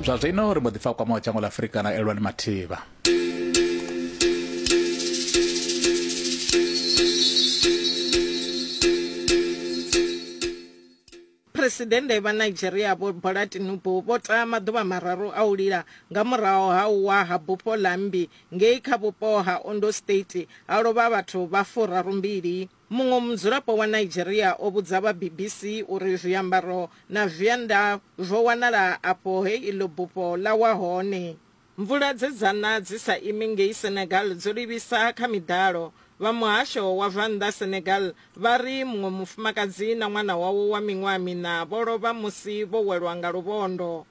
zwa zwino ri mbo ḓi pfa kwama wa dzhango ḽa afurika na elwani mathivha Phresidennde vha Nigeria Vho Bola Tinubu vho ta maḓuvha mararu a u lila nga murahu ha u wa ha bufho ḽa mmbi ngei kha vhupo ha Ondo State ha lovha vhathu vha furarumbili. Muṅwe mudzulapo wa Nigeria o vhudza vha BBC uri zwiambaro na zwienda zwo wanala afho he iḽo bufho ḽa wa hone. Mvula dze dza na dzi sa imi ngei Senegal dzo livhisa kha miḓalo. Vha muhasho wa zwa nnḓa Senegal vha ri muṅwe mufumakadzi na ṅwana wawe wa miṅwaha miṋa vho lovha musi vho welwa nga luvhondo.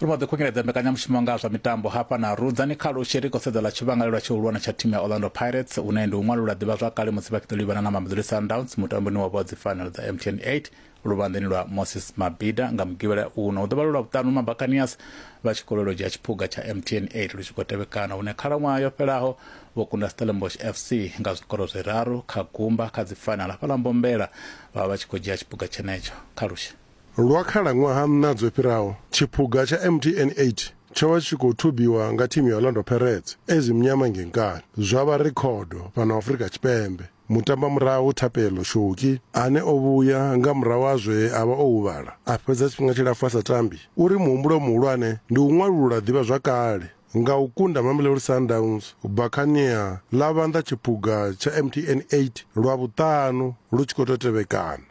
ri vha ḓi khunyeledza mbekanyamushumo nga zwa mitambo hafha na rudzani kha lushi ri khou sedza ḽa tshivhangalelwa tshihulwane tsha thimu ya orlando pirates une ndi u ṅwalula ḓivhazwakale musi vha tshi ḓo livhana na mamelodi sundowns mutamboni wa vha wa dzifanelo dza mtn 8 luvhanḓeni lwa moses mabida nga mugivhela uno u ḓovha lu lwa vhuṱanu mabacanias vha tshi khou lwela u dzhia tshiphuga tsha mtn 8 lu tshi khou tevhekana hune khalaṅwaha yo fhelaho vho kunda stellenbosch fc nga zwikoro zwiraru kha gumba kha dzi final hafhaḽa mbombela vha vha vha tshi khou dzhia tshiphuga tshenetsho kha lushe Lwa khalaṅwaha nṋa dzo fhiraho, tshiphuga tsha mtn 8 tsho vha tshi tshi khou thubiwa nga thimu ya Orlando Pirates, AS Mnyama ngei Nkani, zwa vha rekhodo fhano Afrika Tshipembe. Mutambamurahu Thapelo Shoki, ane o vhuya nga murahu ha zwe a vha o huvhala a fhedza tshifhinga tshilapfu a sa tambi, u ri muhumbulo muhulwane ndi u ṅwalulula ḓivhazwakale nga u kunda Mamelodi Sundowns u bva kha nia ḽa vhanḓa tshiphuga tsha MTN 8 lwa vhuṱanu lu tshi khou tou tevhekana.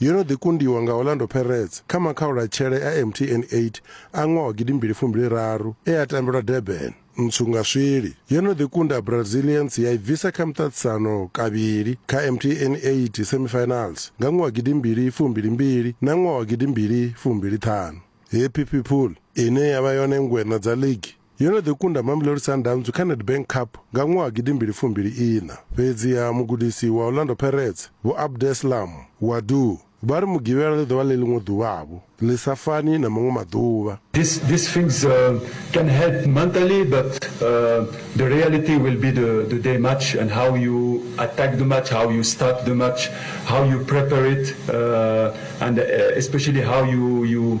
Yo no ḓi kundiwa nga Orlando Pirates kha makhaulatshele a MTN 8 a ṅwaha wa gidi mbili fumbili raru e a tambelwa Durban. Ntswu nga swili, yo no ḓi kunda Brazilians ya i bvisa kha muṱaṱisano kavhili kha MTN 8 semifinals nga ṅwaha wa gidi mbili fumbili mbili na ṅwaha wa gidi mbili fumbili ṱhanu. Happy People ine ya vha yone ngweṋa dza ligi Yo no ḓi kunda Mamelodi Sundowns kha Nedbank Cup nga ṅwaha gidi mbili fumbili iṋa. Fhedziha mugudisi wa Orlando Pirates, Vho Abdeslam Ouaddou, vha ri Mugivhela ḽi ḓo vha ḽi ḽiṅwe ḓuvha-vho ḽi sa fani na maṅwe maḓuvha. This these things uh, can help mentally, but uh, the reality will be the, the day match and how you attack the match, how you start the match, how you prepare it, uh, and uh, especially how you you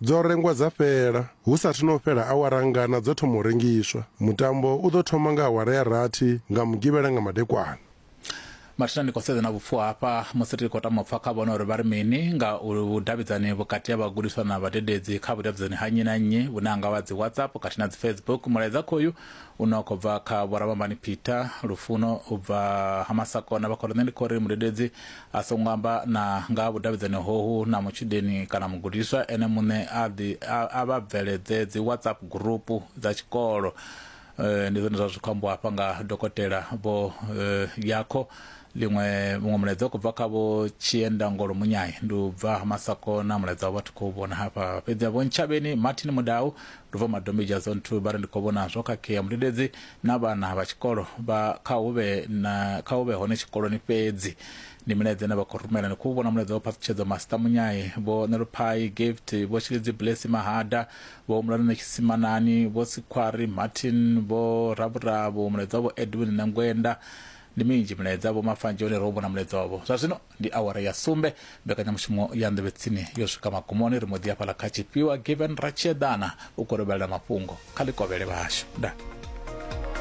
Dzo rengwa dza fhela. Hu sa athu na u fhela awara ngana dzo thoma u rengiswa. Mutambo u ḓo thoma nga awara ya rathi nga Mugivhela nga madekwana. Mathina ndi khou sedza na vhupfuwa hafha musi ri tshi khou tama u pfa kha vhone uri vha ri mini nga vhudavhidzani vhukati ha vhagudiswa na vhadededzi kha vhudavhidzani ha nnyi na nnyi vhune ha nga vha dzi WhatsApp khathihi na dzi Facebook. Mulaedza khoyu une wa khou bva kha Vho Ramambani Peter Lufuno u bva ha Masakona vha khou ri, Nṋe ndi khou ri mudededzi a songo amba na nga ha vhudavhidzani hohu na mutshudeni kana mugudiswa ene muṋe a ḓi a vha bveledze dzi whatsapp gurupu dza tshikolo eh, ndi zwone zwa zwi khou ambiwa hafha nga dokotela vho eh, yakho ḽiṅwe muṅwe mulaedza khou bva kha vho tshiendangolo munyayi ndi u bva masakona mulaedza wa vhathu khou vhona hafha fhedzi vho ntshavheni martin mudau ndi bva madombedzha zone two vha ri ndi khou vhona zwo khakhea mudededzi na vhana vha tshikolo vha kha hu vhe na kha hu vhe hone tshikoloni fhedzi ndi milaedza ine vha khou rumela ni khou vhona mulaedza wa phaṱhutshedzo masita munyayi vho neluphayi gift vho tshilidzi blesi mahada vho humulani na tshitsimanani vho sikhwari martin vho ravhuravu mulaedza wavho edwin na ngwenda ndi minzhi milaedza vho mafanzhe hone ro vhona mulaedza wavho zwa zwino ndi awara ya sumbe mbekanyamushumo ya nḓevhetsini yo swika magumoni ri mbo ḓi hafhala kha tshifhiwa given ratshieḓana u kolobelela mafhungo kha ḽikovhele vhashu nda